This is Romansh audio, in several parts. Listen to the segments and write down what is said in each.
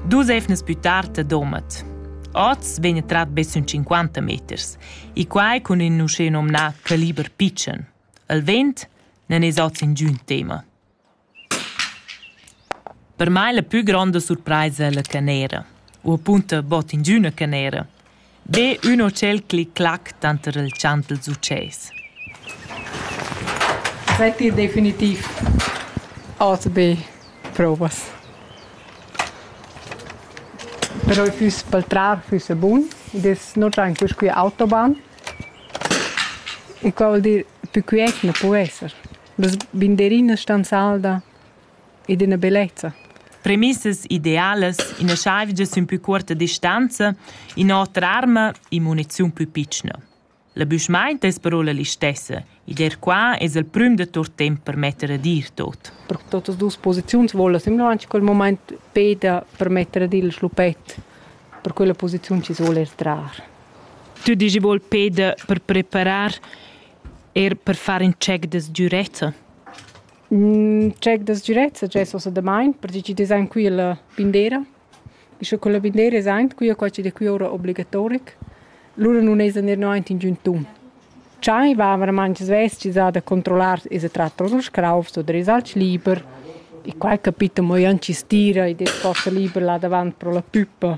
Dus eivnas pü tard a Domat. Oz vegn trat be sün 50 meters e quai cun ün uschè nomnà caliber pitschen. Il vent non es oz ingün tema. Per mai la pü gronda surpraisa è la canera. U appunto bot ingüna canera. Be ün hotel clic-clac tanter il chant dals utschès. Setti definitiv ATB provas. Però i füss pel trar füssa bun, id es no tanco scu autobahn. E qua vuol dir pü quiet na po esser. Las binderinas stan salda. ed ina bellezza. Premissas idealas, ina chaivgia sün plü cuorta distanza, in'otra arma, immuniziun plü pitschna. La büschmaint es però la listessa ed eir qua es el prüm da tuot temp per metter ad ir tot. Per totas duos posiziuns voula simlaunt in quel momaint Peter permetter ad ir il schlupet per quella posiziun chi soul er trar. Tu dici vuol Peter per preparar er per far in check des giuretta? Check das direct success ossa damain, perche chi dess aint quilla bindera. Sche quella bindera es aint, quia qua chi'd es quia oura obligatoric, lura nun esa gnir no aint ingün tun. Chai va verament sveschisà da controllar esa tratta da scraufs oder es alch liber. E quai capita mo ün chi stira ed es forsa liber là davant pro la püppa.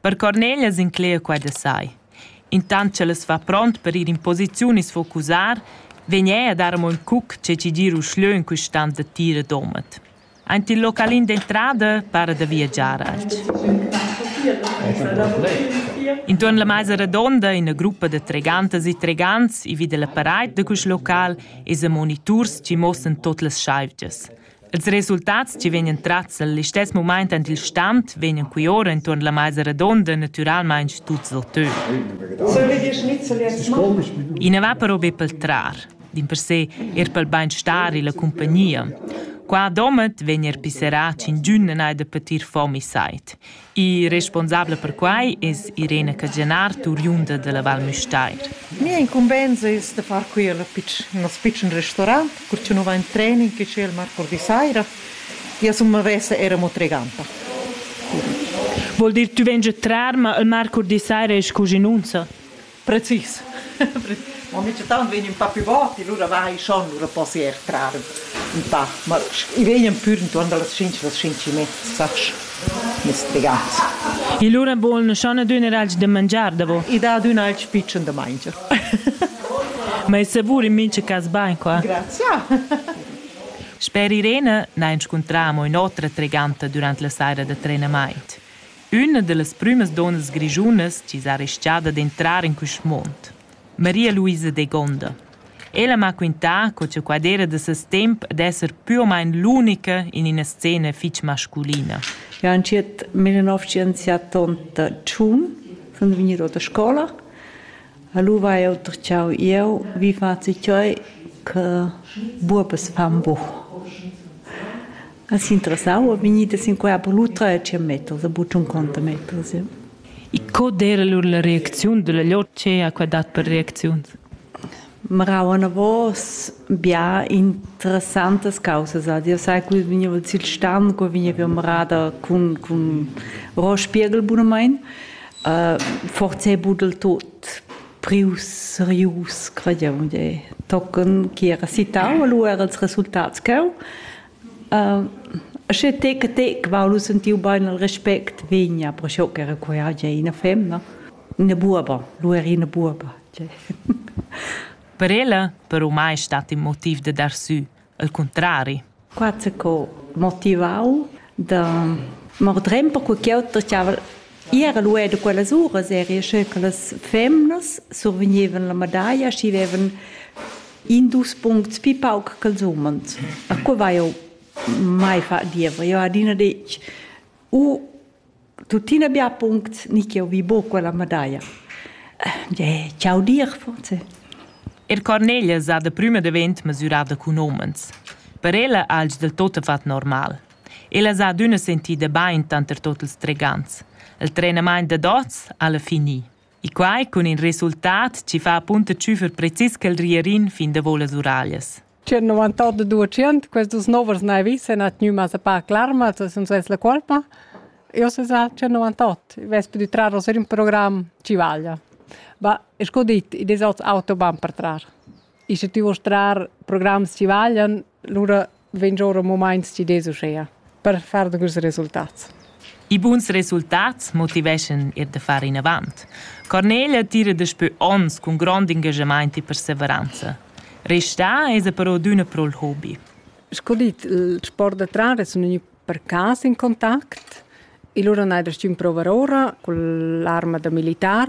Per Cornelia s'inclegia quai da sai. Intant ch'el as fa pront per ir in posiziun e sfocusar, vegn eir a dar amo ün cuc che chi gira uschlö in quistant da tir e domat. Aint il localin d'entrada para da viagiar alch. Intuorn la maisa radonda, ina gruppa da tregantas e tregants e vi da la paraid da quist local es a moniturs chi mossan tot las schaivgias. Ils resultats che vegnan tratgs el listess mumaint en il stand vegnan qui ora enturn la maisa redonda natüralmaing tuts otö. I na va però be pel trar, dimpersè er pel bainstar e la compagnia. Qua a Domat vegn er pisserà ch'indün non ha da patir fom e sait. Il responsabel per quai es Irena Cajanar, turiunda da la Val Müstair. Mia incumbenza es da far quia nos pitschen restaurant, cur cha nu va in treni che c'è il marcurdi saira. Ja sun mavessa eir amo treganta. Vuol dir tü vegn già trar, ma il marcurdi saira es scu genunza? Precis. Ma mica tant vegn un pa più vot, lura vai schon, lura possi er trar un pa. Ma i vegnan pür intuorn da las 5 las 5 e mezza, sacch, mes regals. E lura voln schon adüna alch da mangiar davo. I dà adüna alch pitschen da mangiar. Ma è savur in mincha cas bain qua? Grazia. Sper Irene n'ha inscuntrà amo ün'otra treganta durant la saira da trenamaint. Üna da las prümas donnas grischunas chi s'ha ris-chada d'entrar in quist muond, Maria-Luisa Degonda. Ella m'ha quintà co cha quai d'eira da ses temp d'esser pür o main l'unica in üna scena fich masculina. Ja entschiet me ün nouv scienziatant da tschun, sun gnüda da scoula. Alura va eau ter dschau ieu, wie fazit euch che buobes fan buch? As interessava vegnida sin quai per l'utra e tschient meters, e buc tschunconta meters. E co d'era lur la reacziun dalla lur che ha qua dat per reacziuns? Marau anavos bia interessantas causas ad jau sai co vegniva sil stan, co vegniva marada cun, cun Rohrspiegel bunamain. Uh, forse buc del tot prius, serius, qua jau, tochen chi era citau, lu era ils resultats cheu. Sche tec a tec vau lu sentiu bein il respect vegnia, perciò ch'era quei hagia ina femna, ina buoba, lu era ina buoba. Per ella però mai stat in motiv da dar sü, al cuntrari. Qua c'è co motivau da mordrem per quei ch'auter giava era lu era quellas uras eri sche che las femnas survegnevan la medaglia, schi vevan In dus puncts pi pauc ch'els umans. E co vai eu mai fa diever? Eu adina detg, u tuttina bia puncts ni ch'eu vi buc quella medaglia. Eh, ciao dir forse. Il Cornelia sa da prüma davent mesurada cun homens. Per ella ha els del tot fat normal. Ella sa adüna sentida bain tanter tot ils tregants. Il trenamaint dad oz ha la fini. E quai cun in resultat chi fa apunta tschüfer precis ch'el ria rin fin davo las uraglias. C'è 98% questos novers n'hai vis e n'ha tgnü massa pac larma, sun svess la colpa. Io se sa c'è 98, vespe di trarre ser un programma ci vaglia. Ma sco dit, i des auts autobahn per trar. Ische tü voust trar programs chi vaglian, lura vegn giò ün mumaint chi dess uschea per far dagüns resultats. I buns resultats motiveschan eir da far inavant. Cornelia tira daspö ons cun grond ingaschamaint e perseveranza. Restà esa però adüna pro'l hobi. Sco dit, il sport da trar sun gnü per cas in contact e lura n'haja restü ün prouvar oura cun l'arma da militar.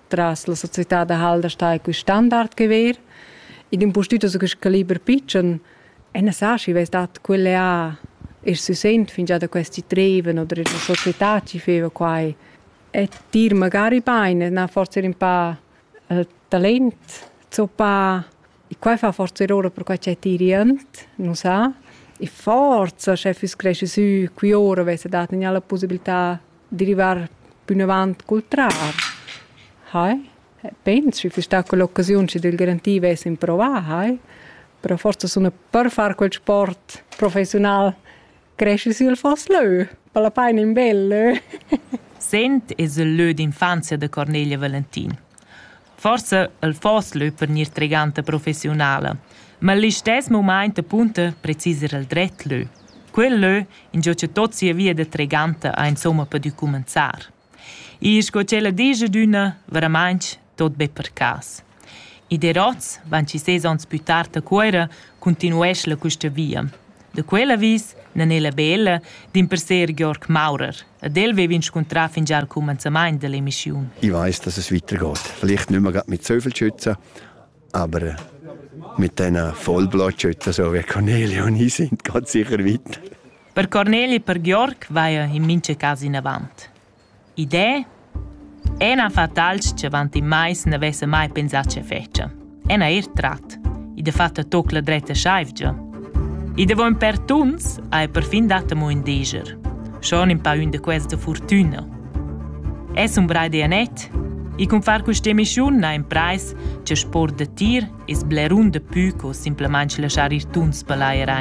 Tras la società da Halder sta quest standard che ver. Id impustüt so quist caliber pitschen e ne sa schi vess dat quelle ha e si sent fingià da questi treven oder la società ci feva quai. E dir magari bain, na forse un pa il talent zoppa. E quai fa forse errore perquai c'è tirient, non sa. E forza, sche füss cresci sü, qui ora vesse dat gnà la possibilità derivar pünavant cul trar. Hai? Pensi füss sta quell'occasiun chi d'el garantì vess improvà, hai? Però forsa suna per far quel sport professiunal cresci sül fos lö, per la paina in bel lö. Sent es il lö d'infanzia da Cornelia Valentin. Forsa el foss leu per gnir treganta professiunala, ma el listess mumaint apunta precis ir el dret lö. Quel lö ingio cha tot sia via da treganta ha insomma pudü cumanzar. Ir sco ch'ella disch adüna, veramainch tot be per cas. I der hoz, van chi ses ons plü tard a Cuoira, continuesch la quista via. Da quel avis n'han ella be ella dimperser Georg Maurer. Ad el vev'in scuntrà fingià al cumanzamaint da l'emischiun. Ich weiß, dass es weitergeht. Vielleicht nicht mehr gerade mit so viel Schützen, aber mit diesen Vollblattschützen, so wie Cornelia und ich sind, geht sicher weiter. Per Cornelia e per Georg vaja in mincha cas inavant. Id è ena fatalscha avant in mais n'avessa mai pensà che fetscha. Ena eir trat. Id ha fatto toc la dretta schaivgia. Id ha von per tuns ha perfin dat amo ün deger. Schon in pa ün da quels da fortüna. Es un brai de Anett, i cun far questa emissiun ha in preis che sport da tir es blerun da pü co simplamente lasciar ir tuns per l'air